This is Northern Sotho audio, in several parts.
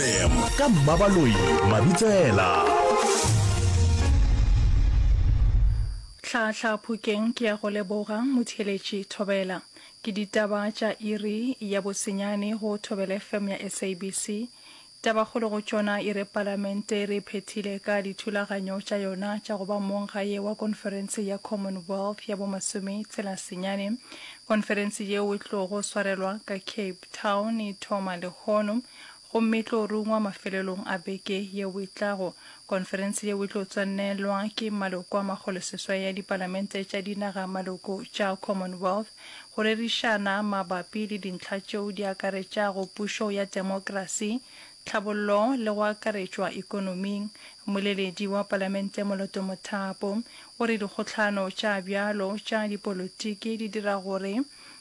FM ka Mmabaloi Mabitsela. Hlahla Phokeng ke ya go leboga Motheeletši Thobela. Ke ditaba tša iri ya bosenyane go Thobela FM ya SABC. Tabakgolo go tšona e re Palamente e re phethile ka dithulaganyo tša yona tša go ba mong gae wa konferense ya Commonwealth ya bo masome tsela senyane. Konferense yeo e tlogo swarelwa ka Cape Town e thoma lehono. Gomme e tlo rungwa mafelelong a beke yeo e tlago. Konferense yeo e tlo tswalelwa ke maloko a makgoloseswai ya dipalamente tša dinaga-maloko tša Commonwealth go rerišana mabapi le dintlha tšeo di akaretšago pušo ya demokrasi, tlhabollo le go akaretšwa ekonoming. Mmoleledi wa palamente Moloto Mothapo o re dikgohlano tša bjalo tša dipolotiki di dira gore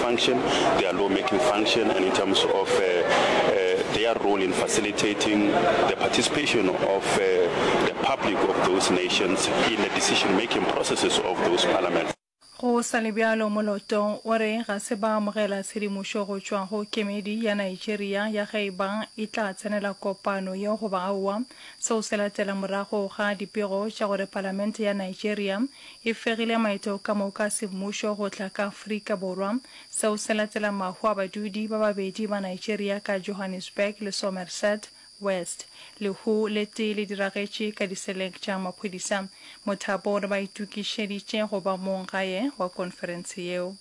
function, their law making function and in terms of uh, uh, their role in facilitating the participation of uh, the public of those nations in the decision making processes of those parliaments. go sa le bjalo moloto o re ga se ba amogela tshedimošo go tšwa go kemedi ya nigeria ya ge e ba e tla tsenela kopano yeo goba aowa seo se latela morago ga dipego tša gore palamente ya nigeria e fegile maeto ka moka a semmušo go tla ka Afrika Borwa. Seo se latela mahu a badudi ba babedi ba Nigeria ka Johannesburg le Somerset West. Lehu le tee le diragetše ka diseleng tša maphodisa. Mothapo o re ba itokišeditše go ba mong gae wa konferense yeo.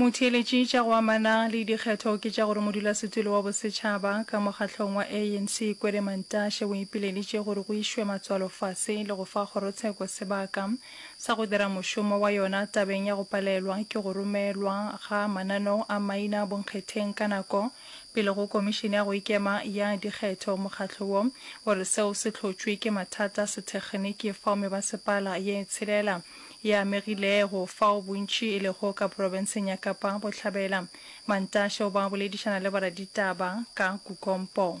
motheeletši tša go amana le dikgetho ke tša gore modulasetulo wa bosetšhaba ka mokgahlong wa anc kwele mantashe o ipileditše gore go išwe matswalo fase le go fa kgorotsheko sebaka sa go dira mošomo wa yona tabeng ya go palelwa ke go romelwa ga mananeo a maina bonkgetheng ka nako Pele go Komišene ya go Ikema ya Dikgetho, mokgatlo wo o re seo se hlotšwe ke mathata a sethekgeniki fao mebasepala ye tshelela e amegilego fao bontši e lego ka profenseng ya Kapa Bohlabela. Mantashe o ba boledišana le boraditaba ka kukompo.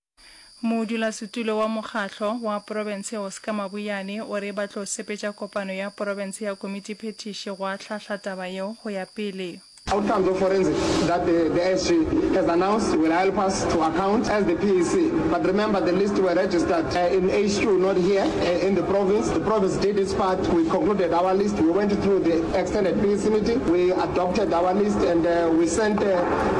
Modulasetulo wa mokgahlo wa profense Oscar Mabuyane o re ba tlo sepetša kopano ya profense ya komitiphethiši go ahlahla taba yeo go ya pele. Outcomes of forensic that the the SG has announced will help us to account as the PAC but remember the list were registered uh, in HQ not here uh, in the province. The province did its part, we concluded our list, we went through the extended PAC meeting, we adopted our list and uh, we sent uh,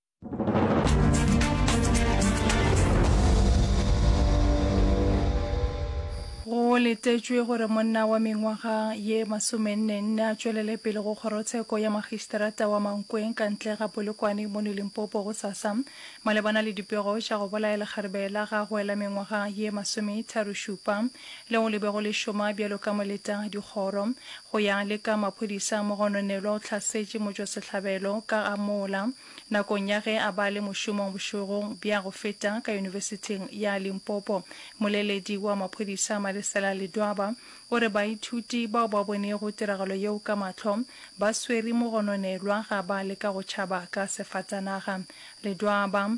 go letetšwe gore monna wa mengwaga ye masomennenne a tšwelele pele go kgorotsheko ya magistrata wa mankweng ka ntle ga polokwane mono limpopo go sasa malebana le dipego tša go bolaya lekgarebe la gagwe la mengwaga ye masometharo-šupa leo le bego le šoma bjalo ka moleta dikgoro. Go ya le ka maphodisa, Mogononelwa o hlasetše motšwasehlabelo ka ga mola nakong ya ge a ba le mošomong bošego bja go feta ka Yunibesithing ya Limpopo. Moleledi wa maphodisa Malesela Ledwaba o re baithuti bao ba bonego tiragalo yeo ka mahlo ba swere Mogononelwa ga ba leka go tšhaba ka sefatanaga. Ledwaba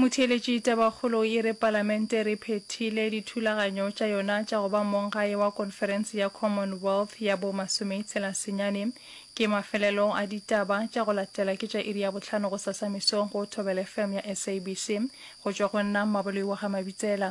Motheeletši Tabakgolo e re Palamente re phethile dithulaganyo tša yona tša go ba monggae wa Konferense ya Commonwealth ya bo masometshela senyane. Ke mafelelo a ditaba tša go latela ke tša iri ya bohlano gosasa mesong go Thobela FM ya SABC. Go tšwa go nna Mmaboloi wa ga Mabitsela.